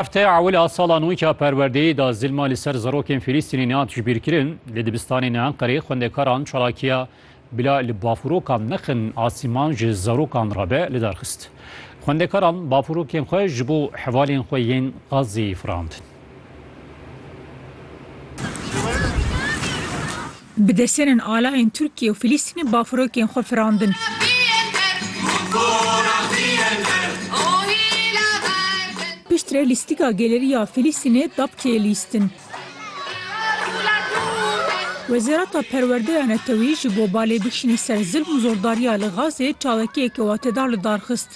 Heftaya ewil a sala nû ya perwerdeyê de zilma li ser zarokên Fîlîstînî nehat jibîrkirin. Li dibistanên Enqerê xwendekaran çalakiya Bila li bafurokan nexin asîman ji zarokan re be li dar xist. Xwendekaran bafurokên xwe ji bo hevalên xwe yên Xazzeyê firandin. Bi desenên alayên Tirkiyê û Filistînê bafirokên xwe firandin. Piştre lîstika geleriya Filistînê Dabkeyê lîstin. Wezareta Perwerdeya Neteweyî ji bo balê bikişîne ser zilm û zordariya li Gazê çawekiyeke watedar li dar xist.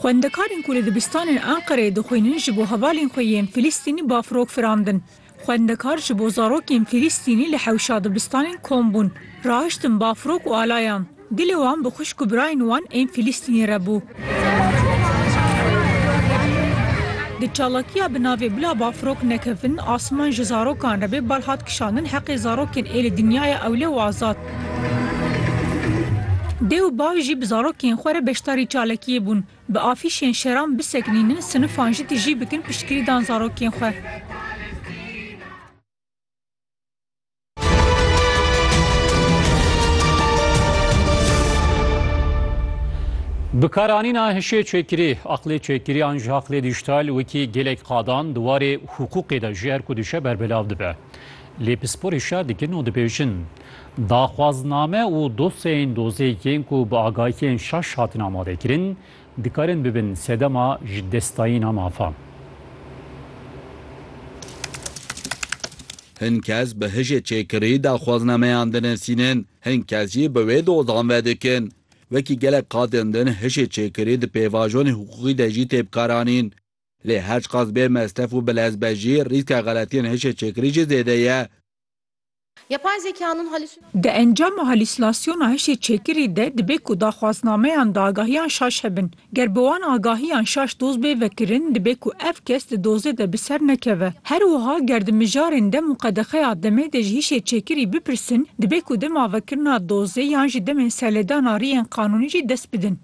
Xwendekarên ku li dibistanên Enqereyê dixwînin ji bo hevalên xwe yên Filistînî bafirok firandin. Xwendekar ji bo zarokên Fîlîstînî li hewşa dibistanên kom bûn. Rahiştin bafrok û alayan. Dilê wan bi xwişk û birayên wan ên Fîlîstînî re bû. Di çalakiya bi navê Bila bafrok nekevin asiman ji zarokan re bê bal hat kişandin heqê zarokên ê li dinyaya ewle û azad. Dê û bav jî bi zarokên xwe re beşdarî çalakiyê bûn. Bi afîşên şeran bisekinînin, sinifan jî tijî bikin piştgirî dan zarokên xwe. Bikaranîna hişê çêkirî, aqlê çêkirî an jî aqlê dîjîtal wekî gelek qadan di warê hiqûqê de jî her ku dişe berbelav dibe. Lê pispor hişyar dikin û dibêjin, Daxwazname û dosyayên dozeyekên ku bi agahiyên şaş hatin amadekirin, dikarin bibin sedema ji destdayîna mafan. Hin kes bi hije çêkirî daxwaznameyan dinasînin, hin kes jî bi wê dozan vedikin. Wekî gelek qadên din hije çêkirî di pêvajonên hiqûqî de jî tê bikaranîn. Lê her çiqas bê mestef û bilez be jî rîska xeletiyên hije çêkirî jî zêde ye. Yapay zekanın halüsinasyonları. Di encama halüsinasyona hişê çêkirî de dibe ku daxwaznameyan di agahiyan şaş hebin. Ger bi wan agahiyan şaş doz bê vekirin, dibe ku ev kes di dozê de bi ser nekeve. Her wiha ger di mijarên dem û qedexeya demê de ji hişê çêkirî bipirsin, dibe ku dema vekirina dozê yan jî demên serlêdana riyên qanûnî jî dest bidin.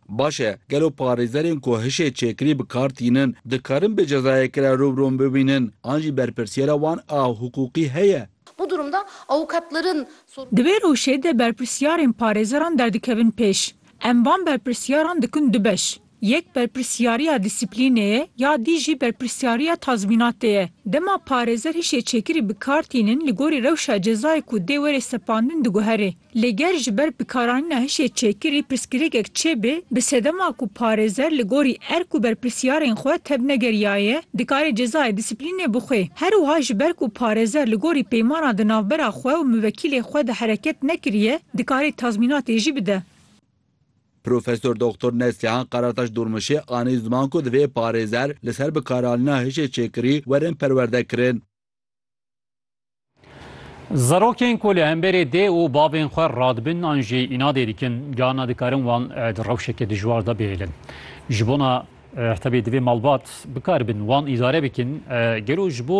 Baş e, gelo parêzerên ku hişê çêkirî bi kar tînin, dikarin bi cezayeke re rûbirûn bibînin an jî berpirsyara wan a hiqûqî heye? Bu durumda avukatların sorumlu. Di vê rewşê de berpirsyarên parêzeran derdikevin pêş. Em van berpirsyaran dikin du beş. Yek berpirsyariya dîsiplînê ye ya dî jî berpirsyariya tazmînatê ye. Dema parêzer hişê çêkirî bi kar tînin li gorî rewşa cezayê ku dê were sepandin diguherê. Lê ger ji ber bikaranîna hişê çêkirî pirsgirêkek çêbe, bi sedema ku parêzer li gorî erk û berpirsyarên xwe tevnegeriyaye, dikare cezayê dîsiplînê bixwe. Her wiha ji ber ku parêzer li gorî peymana di navbera xwe û muvekîlê xwe de hereket nekiriye, dikarî tazmînatê jî bide. Profesor Doktor Neslihan Karataş Durmuşê anî ziman ku divê parêzer li ser bikaranîna hişê çêkirî werin perwerdekirin. Zarokên ku li hemberê dê û bavên xwe radibin an jî înadê dikin, carna dikarin wan di rewşeke dijwar de bihêlin. Ji bona hebê divê malbat bikaribin wan îdare bikin. Gelo ji bo